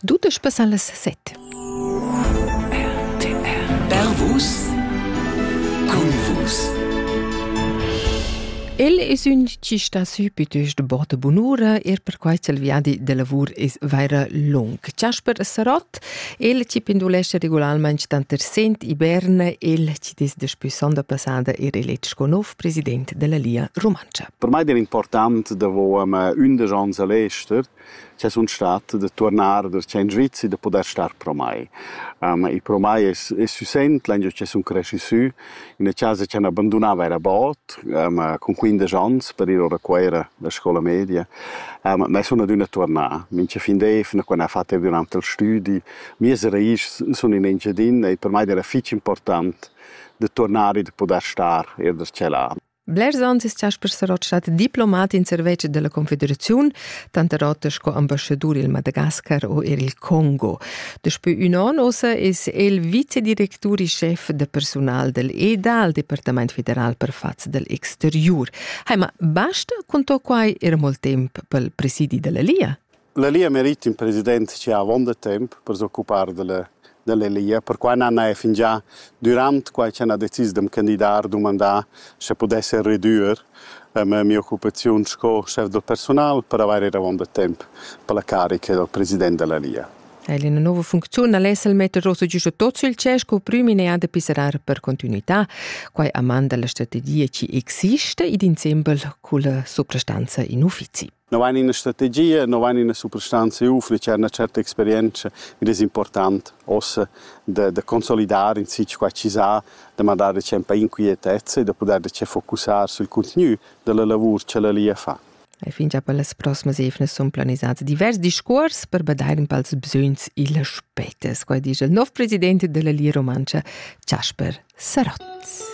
Dudesch passan las set. Bervus Cunvus El es ün chi sta sü pütüsch de botta bunura, er perquai ch'el viadi de lavur es vaira lung. Chasper Sarott, el chi pendulescha regularmaing tanter Sent e Berna, el chi es daspü sonda passada ir eletg con nov, president della Lia Rumantscha. Per mai era important davo am undisch ans a l'ester che sun stat da tornar da in Svizi da poter star pro mai. Um, e pro mai es, es süsent l'anno che sun cresci sü in una casa che abbandonava era bot um, con 15 ans per ir a Cuera la scuola media. Um, ma sun adüna tornà. Minche fin d'efna, quando ha fatto durante il studi, mie raiz sun in Engiadin e per mai era fitch important de tornar e de poder star er da tschelan. Blers ans es Jasper Sarot stat diplomat in serveci della Confederazione, tanterot sco ambassador il Madagascar o er il Congo. Despü un an ossa es el vicedirectur e chef de personal del EDA, il Departament federal per fats del exterior. Haima, basta con to quai era molt temp pel presidi della Lia? La Lia merit ün president che ha avonda temp per s'occupar dalla dalla Lia, perquai n'han eir fingià dürant quai ch'han ha decis d'am candidar dumandà sche pudessan redüer ma mia occupaziun sco schef da persunal per avair eir avonda temp per la carica dal president da la Lia. El ina nova funcziun al es el metter rosa giusto tot sul cer sco prüm idea da pisserar per continuità, quai a man da la strategia chi exista ed insembel culla suprastanza in uffizi. No vain ina strategia, no vain ina suprastanza eu fich cha na certa experientscha id es important ossa da da consolidar in sich qua chi sa, da mandar dachempe in quietezza e da pudair dacheu focussar sul cuntgnü da la lavur cha la Lia fa. E fingià per las proximas eivnas sun planisats divers discuors per badair ün pals bsögns illas petas, quai disch il nov president della Lia Rumantscha, Chasper Sarotz.